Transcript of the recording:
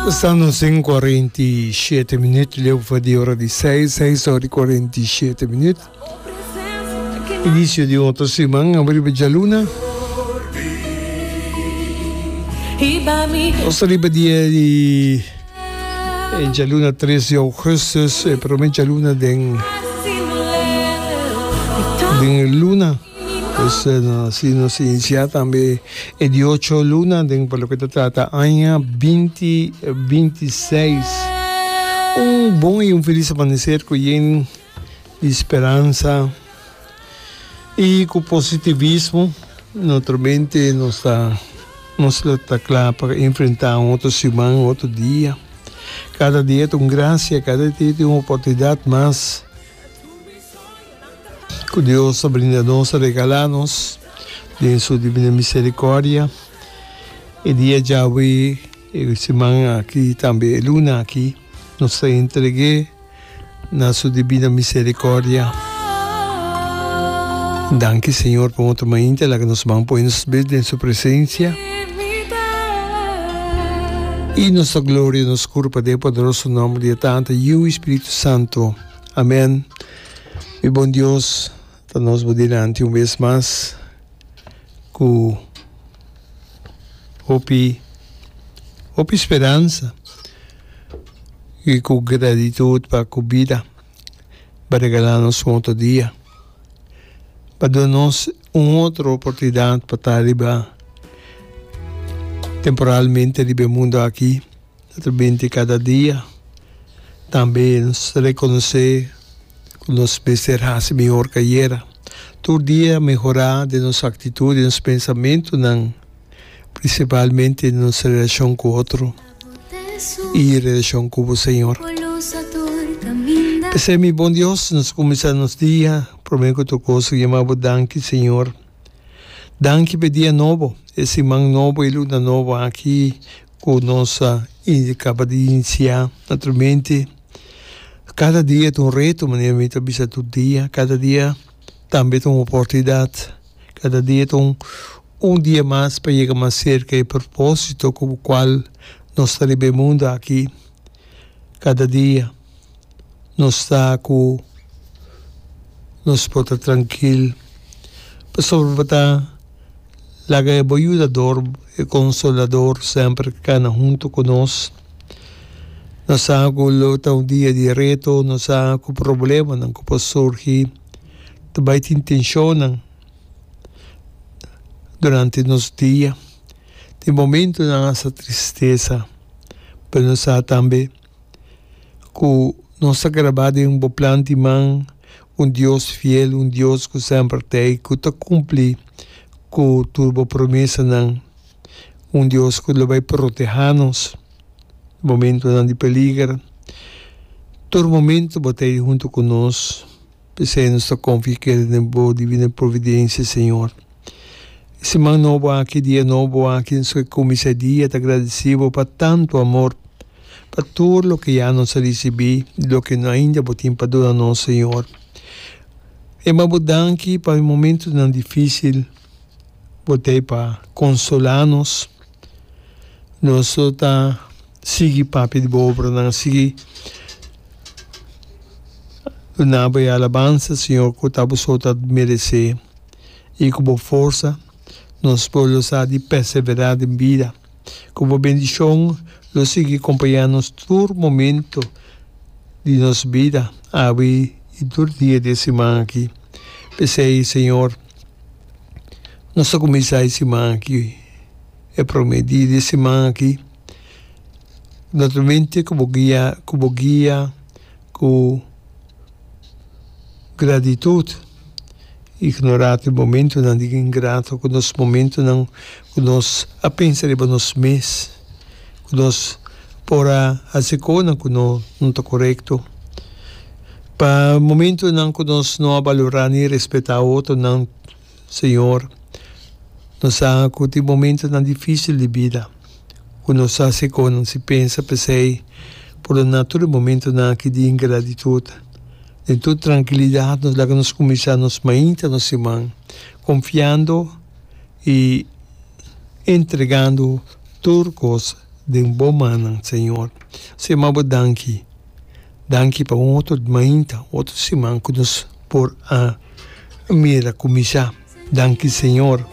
Pasando sin y cuarenta y siete minuut, leufa di ora di seis, seis ora y cuarenta y siete minuut. Inicio di un otro siman abriba djaluna. Nos arriba dia di eh, djaluna 3 di augustus, eh, primer djaluna den, den luna. Esnan si nos inicia tambe e di ocho luna den pa loke ta trata aña binti binti seis. Un bon y un feliz amanecer cu yen di speransa y cu positivismo notro mente nos ta nos lo ta cla pa enfrenta un otro siman un otro dia. Cada dia ta un gracia cada dia ta un oportunidad mas. Ku Dios a brinda nos, a regalá nos den Su divino miserikòrdia e dia djawe, e siman aki tambe e luna aki, nos ta entreg'é na Su divino miserikòrdia. Danki Señor pa un otro mainta laga nos ban poi nos bes den Su presensia i nos ta gloria nos kurpa den e poderoso nòmber di e Tata, Yiu i Spiritu Santo. Amèn. Mi bon Dios, ta nos bo dilanti un bes mas ku hopi hopi speransa i ku gratitut pa ku bida bo a regala nos un otro dia. Bo a duna nos un otro oportunidat pa ta riba temporalmente riba e mundu aki ta ta binti kada dia. Tambe nos ta rekonosé ku nos mester hasi mihor ku ayera. Tur dia mehorá den nos aktitut, den nos pensamentunan, prinsipalmente den nos relashon ku otro i relashon ku bo Señor. P'esei, mi bon Dios, nos kuminsá nos dia promé ku tur kos ri yama bo danki, Señor. Danki pa e dia nobo, e siman nobo, e luna nobo aki. Ku nos a kaba di inisiá naturalmente kada dia ta un reto manera mi ta bisa tur dia, kada dia tambe ta un oportunidat, kada dia ta un un dia mas pa yega mas serka e propósito ku kual nos ta riba e mundu aki kada dia. nos ta ku nos por ta trankil pasobra bo ta laga e bo yudador, e konsolador semper kana huntu ku nos. No sa ku lo ta un dia di reto, no sa ku problemanan ku por surgi ta bai tin tenshonnan durante nos dia. Tin momentunan asa tristesa, pero no sa tambe. ku nos ta grabá den bo plan di man, un Dios fiel, un Dios ku semper ta ei, ku ta kumpli ku tur bo promesanan, un Dios ku lo bai protehá nos momentunan di peliger. Tur momentu bo ta ei huntu ku nos. P'esei nos ta konfia i kere den bo divino providensia, Señor. E siman nobo aki, e dia nobo aki, nos ke kuminsá e dia ta gradesí bo pa tantu amor, pa tur loke ya nos a risibí i loke ainda bo tin pa duna nos, Señor. E m'a bo danki pa e momentunan difísil bo t'ei pa konsolá nos. Nos lo ta. Sigui papia di bo obranan, sigui dunabo e alabansa, Señor, cu ta Boso ta merece. Y cu bo forsa nos por lo sa di persevera den bida. Cu bo bendicion lo sigui compaña nos tur momento di nos bida, awe y tur dia di e siman aki. P'esey, Señor, nos ta cuminsa e siman aki, e prome dia di e siman aki. Naturalmente ku bo guia ku bo guia ku gratitud ignorá tin momentunan di ingrato ku nos momentunan ku nos a pensa riba nos mes ku nos por a hasi konan ku no no ta korekto pa momentunan ku nos no a balorá ni respetá otonan. Señor, nos sa cu tin momentonan dificil di bida cu nos ta haci con si pensa pesey purdoná tur e momentonan aki di ingratitud. Den tur trankilidad nos laga nos cuminsá nos mainta nos siman, confiando i entregando tur cos den Bo mannan, Señor. Señor, mi a Bo danki. Danki pa un otro mainta, otro siman cu nos por a mira cuminsha. Danki Señor.